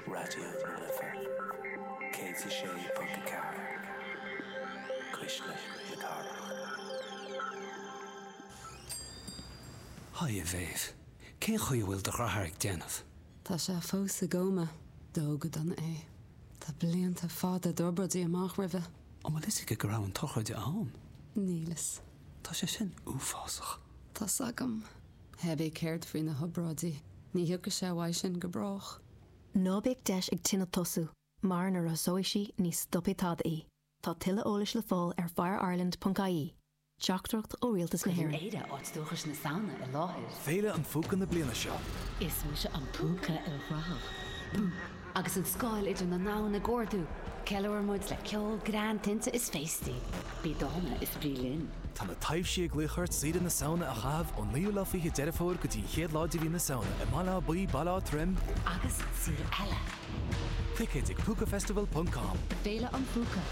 Raidió na Life 106.4 Cuisle na Cathrach. Haigh a Mham, cén chaoi a bhfuil do dhreatháir ag déanamh? Tá sé fós i gcóma. Dódh go dona é. Tá blianta fada d'obráidí amach roimhe. An bhfuil fhios aici go raibh an tsochraide ann? Níl fhios. Tá sé sin uafásach. Tá's agam. Hé, céard faoi na hobráidí? Ní thiocfaidh sé uaidh sin go brách. Ná bíodh deis ag tine tosú, mar nuair a thosóidh sí, ní stopfaidh tada í. Tá tuilleadh eolais le fáil ar fireireland ponc ie. Teachtaireacht ó Rialtas na hÉireann. Cuireann Éire áit dúchais na Samhna i láthair. Féile an Phúca na bliana seo. Is mise an púca ilchruthach. Bú! Agus an scáil idir na domhain ag ardú, ceiliúrann muid le ceol, greann, tinte is féastaí. Bí dána is bí linn. Tá na taibhsí ag glaoch ort deireadh na Samhna a chaitheamh ón 9ú lá fichead Deireadh Fómhair go dtí an chéad lá de mhí na Samhna i mBaile Átha Buí, Baile Átha Troim, agus sa saol eile! Ticéid ag Púcafestival.com. Féile an Phúca,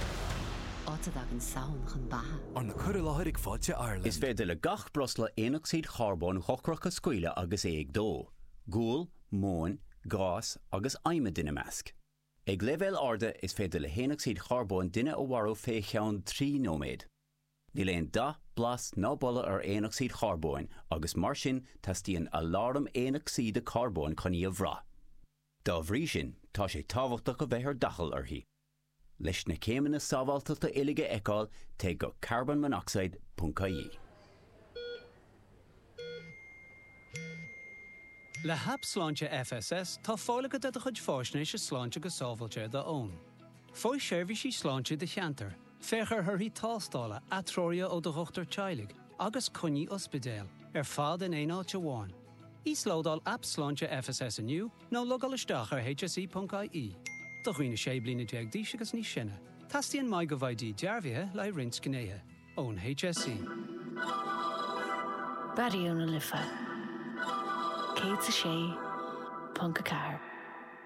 áit a dtagann Samhain chun beatha. Arna cur i láthair ag Fáilte Ireland. Is féidir le gach breosla aonocsaíd charbóin dhochrach a scaoileadh agus é ag dó. Gual, móin, gás agus adhmad ina measc. Ag leibhéil arda is féidir le haonocsaíd charbóin duine a mharú fé cheann trí nóiméad. Níl aon dath, blas ná boladh ar aonocsaíd charbóin agus mar sin teastaíonn aláram aonocsaíde carbóin chun í a bhraith. Dá bhrí sin tá sé tábhachtach a bheith ar d'fhaichill uirthi. Leis na céimeanna sábháilteachta uilig a fheiceáil, téigh go carbonmonoxide ponc ie. Le haip sláinte FSS, tá fáil agat ar do chuid fáisnéise sláinte go sábháilte ar do fhón. Faigh seirbhísí sláinte i do cheantar, féach ar thorthaí tástála, atreoruithe ó do dhochtúir teaghlaigh, agus coinní ospidéil, ar fad in aon áit amháin. Íoslódáil aip Sláinte FSS inniu nó logáil isteach ar hse.ie. Do dhaoine 16 bliana d'aois agus níos sine, teastaíonn MyGov ID dearbhaithe le haghaidh roinnt gnéithe, ón hse. Raidió na Life 106.4.